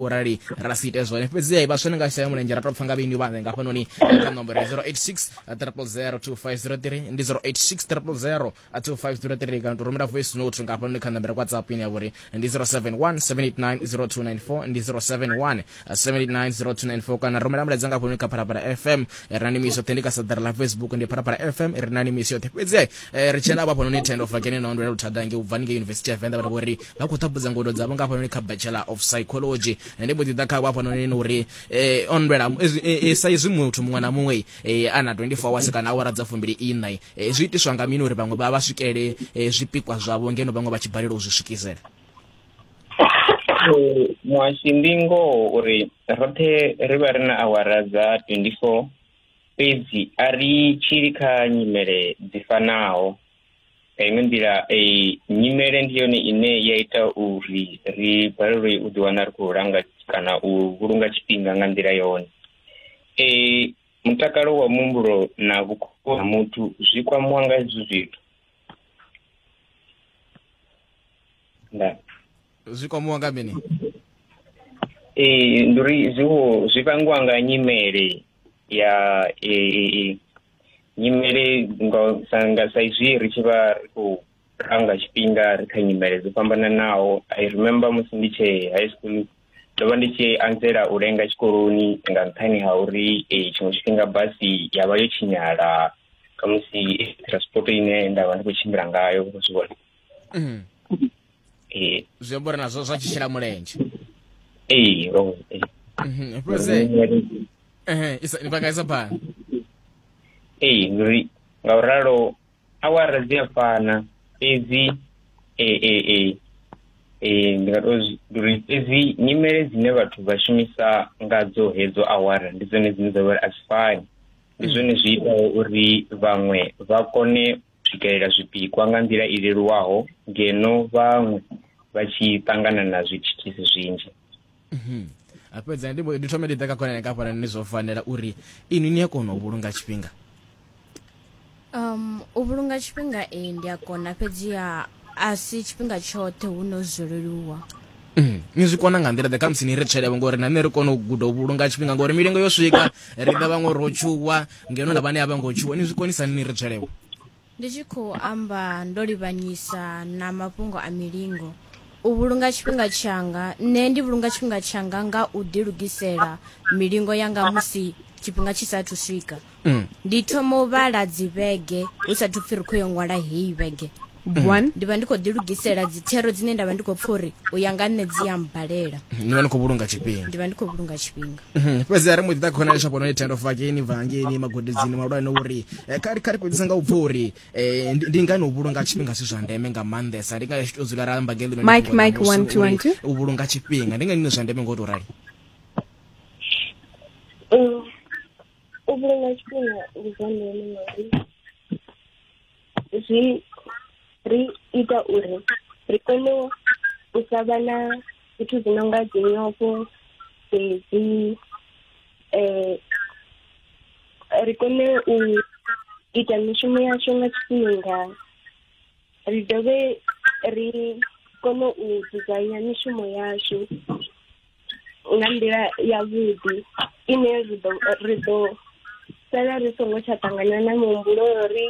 u rali ra si ite zwone fhedziha vhaswa ni nga shaya mulenzhe ra tou pfa nga vhini vhanze nga hafhanoni kha nomboro ya 086 3002503 ndi 086 3002503 kana to rumela voice note nga hafhanoni kha nomboro ya whatsapp ine ya vhori ndi 0717890294 ndi 0717890294 kana rumela mulaedza nga hafhanoni kha phalaphala fm ri na nimi yoṱhe ndi kha sadara ḽa facebook ndi phalaphala fm ri na nimi yoṱhe fhedziha ri tshena vha hafhanoni tendo fakene na ondwela luthadange u bva ningei yunivesithi ya venḓa vha vhori nga khou ṱhaphudza ngodo dzavho nga hafhanoni kha bachelor of psychology ndi mbo ḓi ḓa khavho hafhanoni ni uri eh, on lwela eh, sa izwi muthu muṅwe na muṅwe eh, a na 24 hours kana awara dza fumbili iṋa eh, zwi itiswa nga mini uri vhaṅwe vha vha swikele eh, zwipikwa zwavho ngeno vhaṅwe vha tshi balelwa u zwi swikisela muhashi ndi ngoho uri roṱhe ri vha ri na awara dza 24 fhedzi a ri tshili kha nyimele dzi fanaho nga iṅwe nḓila eh, nyimele ndi yone ine ya ita uri ri balelwe u ḓiwana ri khou langa kana u vhulunga tshifhinga nga nḓila yone eh, mutakalo wa muhumbulo na vhukoni ha muthu zwi kwamiwa nga hezwi zwithu nda zwi kwamiwa nga mini eh, ndi uri zwiwo zwi vhangiwa nga nyimele ya eh, eh, eh, nyimele ngo sa nga sa izwi ri tshi vha ri khou ranga tshifhinga ri kha nyimele dzo fhambananaho i remember musi ndi tshe high school ndo vha ndi tshi anzela u lenga tshikoloni nga nṱhani ha uri eh, tshiṅwe tshifhinga basi ya vha yo tshinyala khamusi eh, transport ine nda vha ndi khou tshimbila ngayo zwi vhona Mm. eh zwi amba uri nazwo zwa tshi shela mulenzhe eh ro eh Mhm, fhedzi ehe, isa- ni vha kaisa phanḓa ee ngori nga u ralo awara dzi a fana fhedzi e e e e ndi nga to zwi- ndi uri fhedzi nyimele dzine vhathu vha shumisa ngadzo hedzo awara ndi dzone dzine dza vha uri a dzi fani ndi zwone zwi itaho uri vhaṅwe vha kone swikelela zwipikwa nga nḓila i leluwaho ngeno vhaṅwe vha tshi ṱangana na zwithithisi zwinzhi mhm. a fhedza ndi ndi thome ndi ḓa kha khonani kafhana ni zwo fanela uri inwi ni a kona u vhulunga tshifhinga um u vhulunga tshifhinga ee ndi a kona fhedziha a si tshifhinga tshoṱhe hu no zwo leluwa mm, ni zwi kona nga nḓila ḓe khamusi ni ri tshelevho ngori na nṋe ri kone u guda u vhulunga tshifhinga ngori milingo yo swika ri ḓa vhaṅwe ro tshuwa ngeno na vhane a vha ngo tshuwa ni zwi konisa ni ri tshelevho ndi tshi khou amba ndo livhanyisa na mafhungo a milingo u vhulunga tshifhinga tshanga nṋe ndi vhulunga tshifhinga tshanga nga u ḓilugisela milingo yanga musi tshifhinga tshi saathu swika mm. ndi thoma u vhala dzivhege hu sathu pfhi ri khou yo ṅwala heyi vhege mm. one ndi vha ndi khou ḓilugisela dzithero dzine nda vha ndi khou pfha uri u ya nga nṋe dzi ya mbalela mm, ndi vha ndi khou vhulunga tshifhinga ndi vha ndi khou vhulunga tshifhinga mm-hmm. fhedzi a ri mbo ḓi ḓa khona lesha fhano ni tendo fakeni vhangeni magudedzini malwani uri eh, kha ri fhedzisa nga u pfha uri eh, ndi ngani u vhulunga tshifhinga si zwa ndeme nga maanḓesa ndi nga tshi tou dzula ra amba ngeli mike mike one two one two u vhulunga tshifhinga ndi ngani zwa ndeme ngo to rali u vhulunga tshifhinga ndi zwa ndeme ngauri zwi ri ita uri ri kone u sa vha na zwithu zwi no nga dzinyofho dzedzi um ri kone u ita mishumo yashu nga tshifhinga ri dovhe ri kone u dzudzanya mishumo yashu nga nḓila yavhuḓi ine ri ḓo ri ḓo sala ri songo tsha ṱangana na muhumbulo uri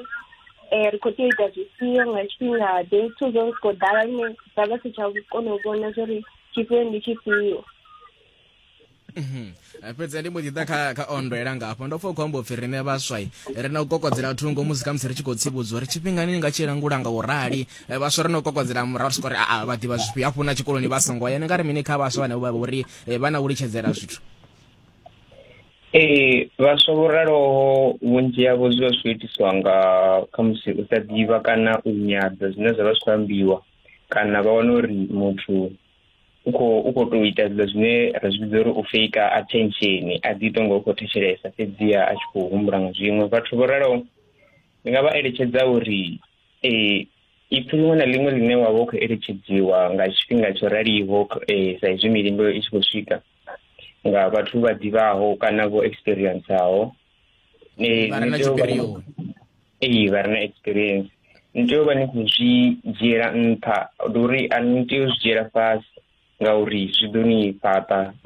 um ri khou tea u ita zwifhio nga tshifhinga ḓe zwithu zwo ri khou ḓala lune ra vha si tsha kona u vhona zwo ri tshifhio ndi tshifhio mhm. eh, fhedzi ndi mbo ḓi ḓa kha kha ondo ela ngafho ndo pfa u khou amba upfhi riṋe vhaswai ri na u kokodzela thungo musi khamusi ri tshi khou tsivhudzwa uri tshifhingani ni nga tshi langula nga u rali eh, vhaswa ri no kokodzela murahu ri soko ri aa vha ḓivha zwifhio hafhu na tshikoloni vha songo ya ni nga ri mini kha vhaswa vhane vha uri eh, vha na u litshedzela zwithu ee vhaswa vho raloho vhunzhi havho zwi vha zwi khou itiswa nga khamusi u sa ḓivha kana u nyadza zwine zwa vha zwi khou ambiwa kana vha wana uri muthu u khou u khou tou ita zwiḽa zwine ra zwi vhidza uri u fake attention a ḓi tonga u khou thetshelesa fhedziha a tshi khou humbula nga zwiṅwe vhathu vho raloho ndi nga vha eletshedza uri ee ipfi ḽiṅwe na ḽiṅwe ḽine wa vha u khou eletshedziwa nga tshifhinga tsho raliho eh, sa izwi milingo i tshi khou swika nga vhathu vha ḓivhaho kana vho experienceaho eh, vha re na tshipirioni ee vha re na experience ni tea u vha ni khou zwi dzhiela nṱha ndi uri a ni tea u zwi dzhiela fhasi ngauri zwi ḓo ni fhaṱa